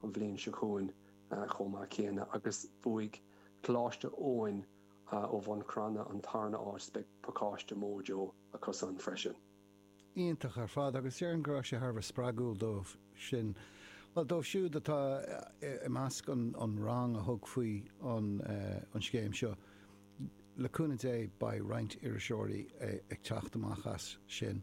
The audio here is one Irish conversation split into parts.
an bhliain seo chugainn chomh maith céanna agus bhuaigh Coláiste Eoin ó Bhun Cranncha an tarna áit. Beidh pacáiste Mojo acusan freisin. Iontach ar fad agus déarfainn go raibh sé thar a bheith spreagúil dóibh sin, bhuel dóibh siúd atá i measc an rang a thug faoi an scéim seo. Le cúnamh Dé beidh roinnt iriseoirí ag teacht amach as sin.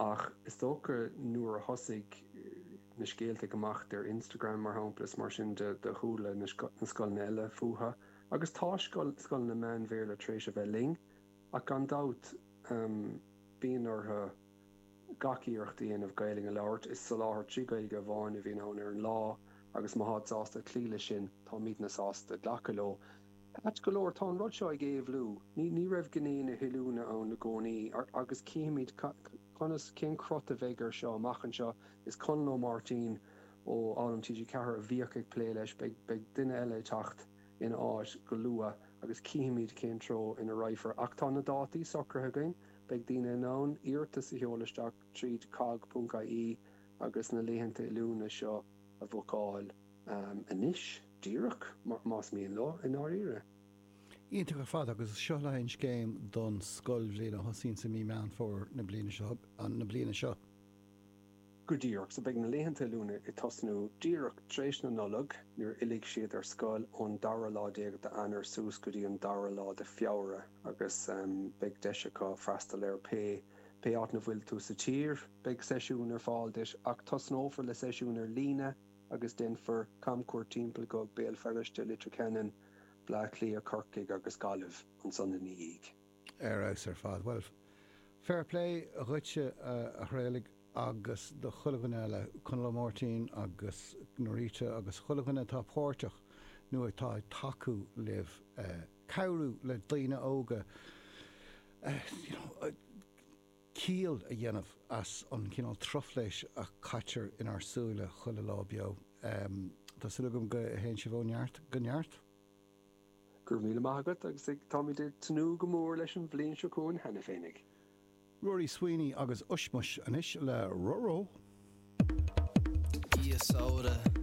Ach is dócha nuair a thosaigh na scéalta ag imeacht ar Instagram, mar shampla, is mar sin de do chuala na scoileanna eile fúthu. Agus tá scoileanna meán-Bhéarla tar éis a bheith linn, ach gan dabht bíonn orthu gach iarracht a dhéanamh Gaelainn a labhairt. Is soláthar trí Ghaeilge amháin a bhíonn ann ar an lá agus má táid sásta cloí leis sin, táimidne sásta glacadh leo. Ait go leor, tá an rud seo ag éabhlú. Ní raibh gné na hoiliúna ann i gcónaí, agus cífimid conas, cén crot a bheidh air seo amach anseo. Is Conall Ó Máirtín ó Fhoghlaim TG4 a bhíodh ag plé leis. Beidh duine eile ag teacht ina áit go luath agus cífimid cén treo ina raghfar. Ach tá na dátaí socraithe againn. Beidh daoine in ann iarratas a sheoladh isteach tríd cogg.ie agus na laethanta oiliúna seo a bhookáil. Anois díreach, más mian leo, i ndáiríre. Iontach ar fad agus is seo leis an scéim don scoilbhliain a thosaíonns i mí Meán Fómhair na bliana seo, na bliana seo. Go díreach, so beidh na laethanta oiliúna ag tosnú díreach tar éis na Nollag nuair a fhillfidh siad ar scoil ón dara lá déag d'Eanáir suas go dtí an dara lá de Feabhra agus beidh deis acu freastal ar pé pé áit ina bhfuil tú sa tír. Beidh seisiún ar fáil duit ach tosnófar le seisiún ar líne. agus déanfar camchuairt timpeall go Béal Feirste, Leitir Ceanainn, Bleá Cliath, Corcaigh agus Gaillimh ansan ina dhiaidh. Ar fheabhas ar fad. Bhuel, fair play dhuitse a Thraolaigh agus do chuile dhuine eile, Conall Ó Máirtín agus Norita agus chuile dhuine atá páirteach nó atá ag tacú libh cabhrú le daoine óga you know, ciall a dhéanamh as an chineál truflaise a chaitear inár súile chuile lá beo. Tá súil agam go théann sibh ó neart go neart. Go raibh míle maith agat agus táimid ag tnúth go mór leis an bhliain seo chugainn cheana féinig. Rory Sweeney agus Ushmush anois le Roro. Dia Saoire!